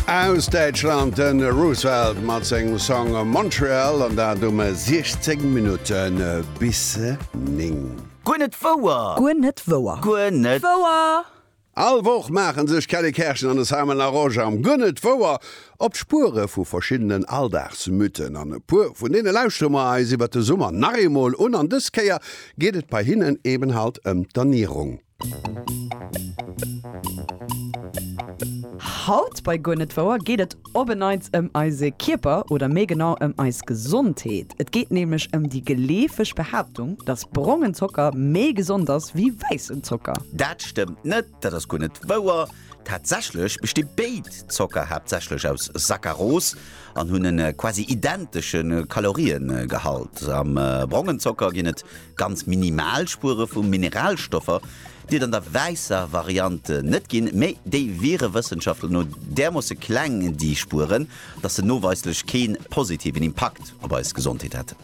Aus Däitschland de Roosevelt mat sengem Song Montreal an dat um 16 Minutten bis 9. Guer net wouer! Guer net wouer! Guer net wouer! All Woch maachen sech d'Kelly Kerschen an de Simon Larosche am Guer net wouer op d'Spuere vu verschiddenen Alldagsmythen. An e puer vun deene lauschtere mer eis iwwert de Summer nach eemol un. An dës Kéier geet et bei hinnen eben halt ëm d'Ernierung. Haut bei Guer net wouer geet et op e Neits ëm eise Kierper oder méi genau ëm eis Gesondheet. Et geet nämlech ëm déi geleefeg Behaaptung, dass brongen Zocker méi gesond ass wéi wäissen Zocker. Dat stëmmt net, dat ass guer net wouer. Tatsächlech besti béid Zocker haaptsächlech aus Saccaros an hunn e quasi identesche Kaloriegehalt. Am brongen Zocker ginn et ganz minimal Spuere vu Mineralstoffer, déi et an der wäisser Variant net ginn, mee déi wiere Wëssenschaftler no därmoosse kleng, déi Spueren, datt se noweislech kee positiven Impakt. op eis Gesondheet hätt.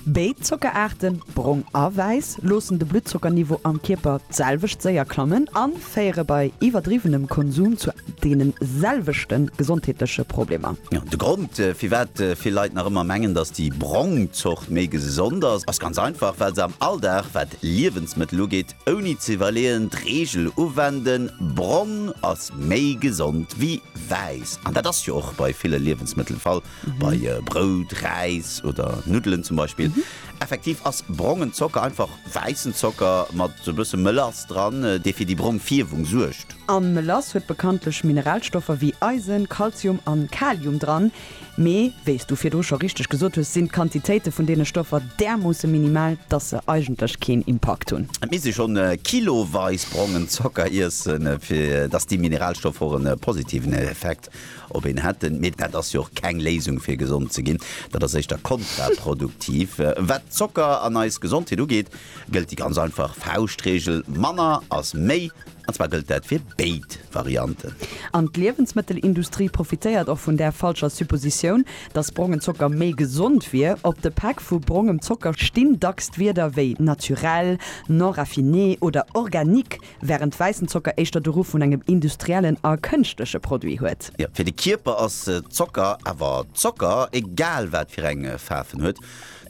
Béid Zockeraarte, brong a wäiss, loossen de Bluttzocker-Niveau am Kierper d'selwecht séier klammen a féiere bei iwwerdriwwenem Konsum zu deene selwechte gesondheetleche Problemer. De Grond, firwat vill Leit nach ëmmer mengen, datt déi brong Zort méi gesond ass, ass ganz einfach, well se am Alldag, wat Liewensmëttel ugeet, ouni ze iwwerleeën d'Reegel uwenden, Brong ass méi gesond wéi wäiss. An dat ass jo och bei ville Liewensmëttel de Fall. bei Brout, Räis oder Nuddelen zum Beispill. Effektiv ass brongen Zocker einfach wäissen Zocker mat e bësse Mélass dran, dee fir déi brong Fierwung suergt. A Mélass huet bekanntlech Mineralstoffer wéi Eisen, Kalzium an Kalium dran. Mee wéis du virdru scho richteg gesot hues, sinn d'Quantitéite vun deene Stoffer därmoosse minimal, dass se eigentlech keen Impakt hunn. Et misst ee schonn kiloweis brongen Zocker iessen, fir dass déi Mineralstoffer och e positiven Effekt Op een hätten, mee dat ass jo och keng Léisung fir gesond ze ginn, dat ass éischter kontraproduktiv. Wat Zocker an eis Gesondheet ugeet, gëllt déi ganz einfach Fauschtreegel, manner ass méi, an zwar gëllt dat fir béid Varianten. An d'Liewensmëttelindustrie profitéiert och vun där falscher Suppositioun, datt brongen Zocker méi gesond wier. Op de Päck vu brongem Zocker stinn dacks d'Wierder wéi naturel, non raffiné oder organique, Wärend wäissen Zocker éischter de Ruff vun engem industriellen a kënschtleche Produit huet. Jo, fir de Kierper ass Zocker awer Zocker, egal wat fir eng Faarf en huet.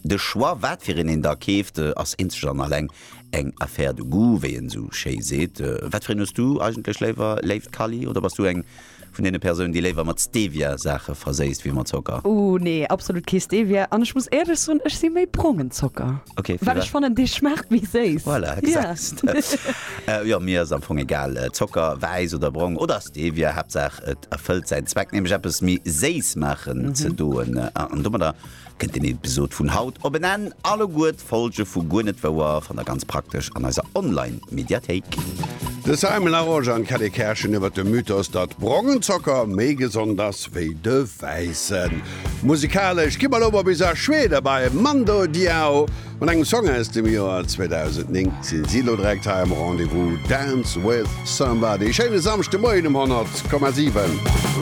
De Choix, wat fir een een da keeft, ass eenzeg an alleng eng Affaire de goût, wéi een esou schéi seet. Wat fir een hues du eigentlech léiwer, léift Kally, oder bass du eng vun deene Persounen, déi léiwer mat Stevia Saache verséisst wéi mat Zocker. Ooh nee, absolut kee Stevia. An ech muss éierlech soen, ech si méi brongen Zocker, okay, well ech fannen dee schmaacht méi séiss. Voilà, gesahst. Yeah. Jo, mir ass am Fong egal, Zocker, wäiss oder brong, oder Stevia, Haaptsaach et erfëllt säin Zweck, nämlech eppes méi séiss maachen ze doen. An domadder Kënnt den Episod vun haut op en Enn, alleguer d'Folge vu Guer net wouer fannt der ganz praktesch an eiser Online Mediathéik. De Simon Larosche an d'Kelly Kerschen iwwer de Mythos, datt brongen Zocker méi gesond ass wéi de wäissen. Musikalesch gi mer elo mol bis a Schweden bei Mando Diao. Mat engem Song aus dem Joer 2009 sinn si elo direkt hei am Rendez-vous Dance With Somebody. Schéine Samschdemoien um 100,7.